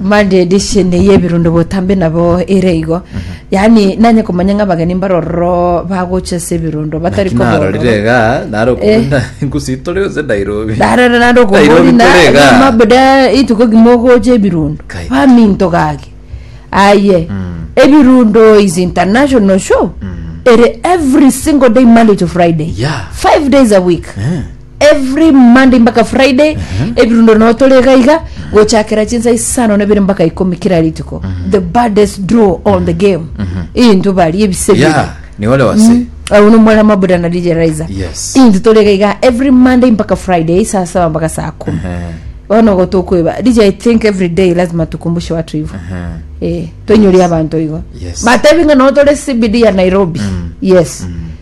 Monday edition eye ebirundo botambe nabo ere igo yaani nanye komanya ng'a abageni mbare ororo bagocha ase ebirundo batari Naki kobororo narorire iga naro okobuna ngusitore gose Nairobi narara nande Nairobi okobori na tore iga. na mabuda ituko kimo ogocha ebirundo Kai. baminto gaki aye ebirundo is international show ere every single day monday to friday Yeah. five days a week Eh. Every Monday mpaka Friday ebirundoro nabo tore iga iga gochakera chinsa isano na ibere mpaka ikomi kera rituko the baddest draw on the game into bari ebise bire ya ni ole wase au ni omwana mabuda na DJ Raiza Yes. into tore iga iga every Monday mpaka Friday saa saba mpaka saa kumi Ehe, bono ogo tokoeba DJ I think every day lazima tukumbushe watu hivyo ehe. eh tonyoria abantu igo Yes. batebi ng'a no tore CBD ya Nairobi yes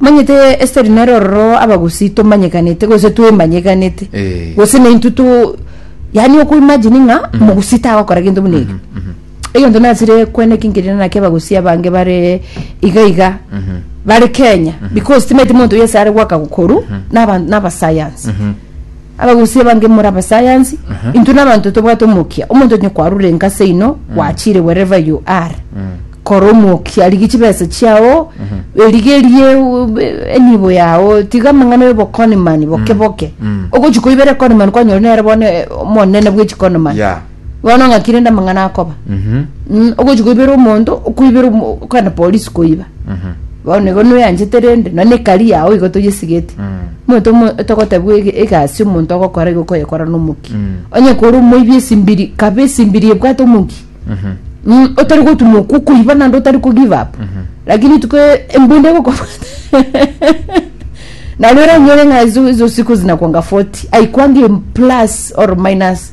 Omanyete Esteri nere ororo Abagusii tomanyekanete gose twemanyekanete Eh. gose naintwe to yaani oko imagine ng'a Omogusii tagokora gento buna eke egento nasire kwena eke nkerire naki Abagusii abange bare iga iga bare Kenya because timaeti monto oyio ase are goaka gokoru naba naba science Abagusii abange more abasayansi, intwe nabanto tobwate omokia, omonto onye kwarure enka seino, gwachire wherever you are, kora omokia, rigia chibesa chiao, erigerie u- enibo yao, tiga amang'ana y'obokonimani boke boke. Ogochia koibera ekonimani kwanyora nere bono eh, omonene bw'echikonomani. Yeah. bono ng'aki rende amang'ana akoba Mhm. Mm, ogochi koibera omonto okoibera omo- okogenda polisi koiba Mhm. bono nigo noyanchete rende nonye ekari yao igo toyesigete Mm. omonto omo- togotebiwa ege- egasi omonto ogokora igo okoyekora nomoki Mm. onye kore omoibi esimbiri kaba esimbiri ebwate omoki Mhm. Mm, otari gotuma oku okoiba naende otari ko give up lakini rituko embunda egokobwata naro eranyore ng'a izo izo siku zinakwanga 40 aikwanga em- plus or minus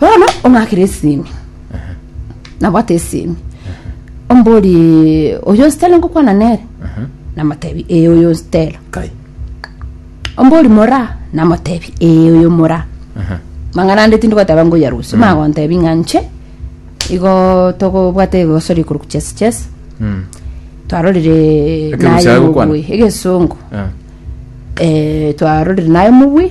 Bono ong'akere esimi nabwate esimi ombori oyo nsitela ngokwana nere namotebi ee oyo nsitela kai ombori mora namotebi ee oyo mora mang'ana ande tindi goteba ngoya rusu magontebi ng'a nche igo togobwate egosoria korwa chesi chesi Mm. twarorire Ekerusia naye agokwana? mobui egesongo Ah. eh, twarorire naye mobui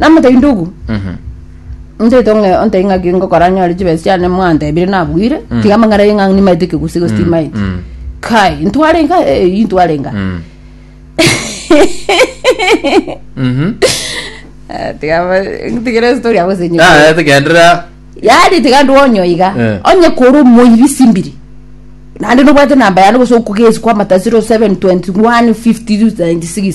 namotaindogu ntaito ng'e ontai ng'aki ngokora nyore chibesa chiane mwantebire nabwire tiga amang'ana aye ng'a nimaete ekegusi gose timaeti mm. kai ntware nka eh, ii ntware nka Mm. Mhm. Eh, tiga ba- tigere story abo senye Ah, tigenderera yaani tiga ndwonyo iga Eh. onye koro moiri simbiri naende nobwate namba yane gose okogesi kwa matasiro 7 21 50 96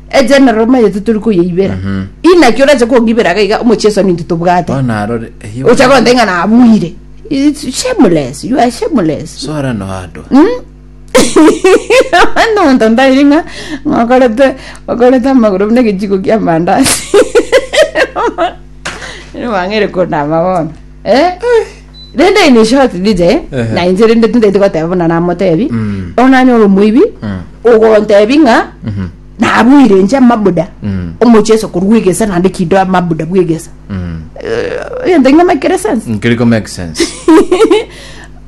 egenerero omanyete tori koyeibera inaki orache kong'ibera iga iga omochie esoni intwe tobwate bono arore eyio ocha bono- gonta ng'a nabuire It's shameless you are shameless sora noandwa nonto ndairi ng'a ng'a okorete okorete amagoro buna egechiko kia amandasi Ere bang'aire konama bono eh rende in a short detail Ehe. na inche rende tindaiti goteba buna namotebi Mm. bono nanyora omoibi Mm. ogontebi ng'a Mhm. nabuire inche amabuda Mm. omocheso korwa egesa naende kido amabuda bwa egesa Mm. egento ng'a make sense Nkiriko make sense.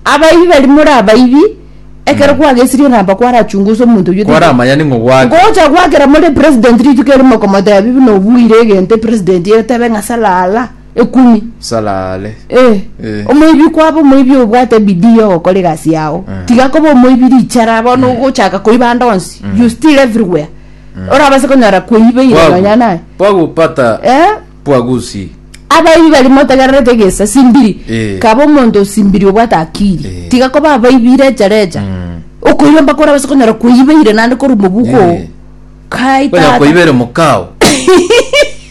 abaibi bari muri abaibi ekero kwagesirie namba kwarachungusa omonto oyio Kwara amanyani ng'o gwake. ngocha gwakera muri president rituko erimo komotebi buna obuire egento president etebe ng'a salala ekumi Salale. Eh, Eh. omoibi kwaba omoibi obwate bidii yogokora egasi yao Eh. tiga koba omoibi richara bono ogochaka koiba ande onsi you still everywhere orabase konyora kweiba ire Bwagu- nonya naye bwagupata eh bwagusi abaibi bari motegererete egesa simbiri Eh. kaba omonto osimbiri obwate akiri Eh. tiga koba abaibi recha recha Mm. okoiba mpaka orabase konyora kweiba ire nande korwa mobuko Eh. kai Kwenya tata koibere mukao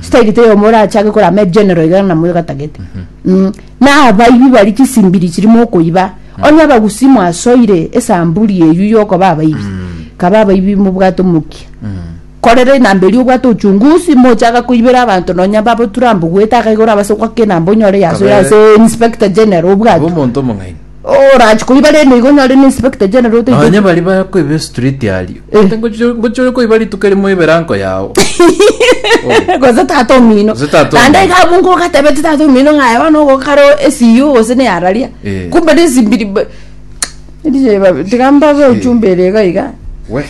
style te yomo orachake korama egeneral iga na moyogatagete Mm. na abaibi bari chisimbiri chiri mokoiba onye abagusi mwasoire esamburi eyu yokoba abaibi kaba abaibi mobwate omokia korere enamba eria obwate uchungusi mochaga koibera abanto nonya babo turambu gwete akaiga orabase goaka enamba onyore yasoire Kabere. ase inspector general obwate Omonto omong'aini. Orache koiba rende igo onyare ne inspector general oteche. Nonye baria bakoiba estriti aria. Eh. Gose ngochi- ngochi ore koiba rituko erimo oibe eranko yao. Oyo. gose tata omino Gose tata naende omino. iga abwo ngogatebeti tata omino ng'a aye bono ogoka kare esiyo gose ne araria Eh. kumbe nesimbiri mbe- Erio eba- tiga mbabe ochumba ere iga iga Weh.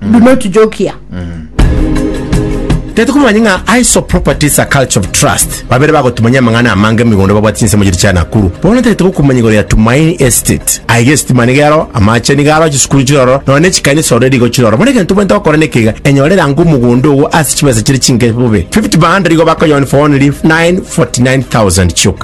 do not joke here Tari tokomanya ng'a ISO Properties a Culture of Trust babere bagotumanyia amang'ana amange emigondo babwate chinsemo chiria chia Nakuru. Bono tari togokumanya igoro ya Tumaini Estate. Aiga esitima niga ero, amache niga aro, chisukuru chire ororo, nonya ne chikanisa already igo chire ororo. Bono egento tobwenerete gokora neke iga, enyore rango omogondo ogo ase chibesa chire chinke bobe. 50 by 100 igo bakoyoa for only 949,000 chioka.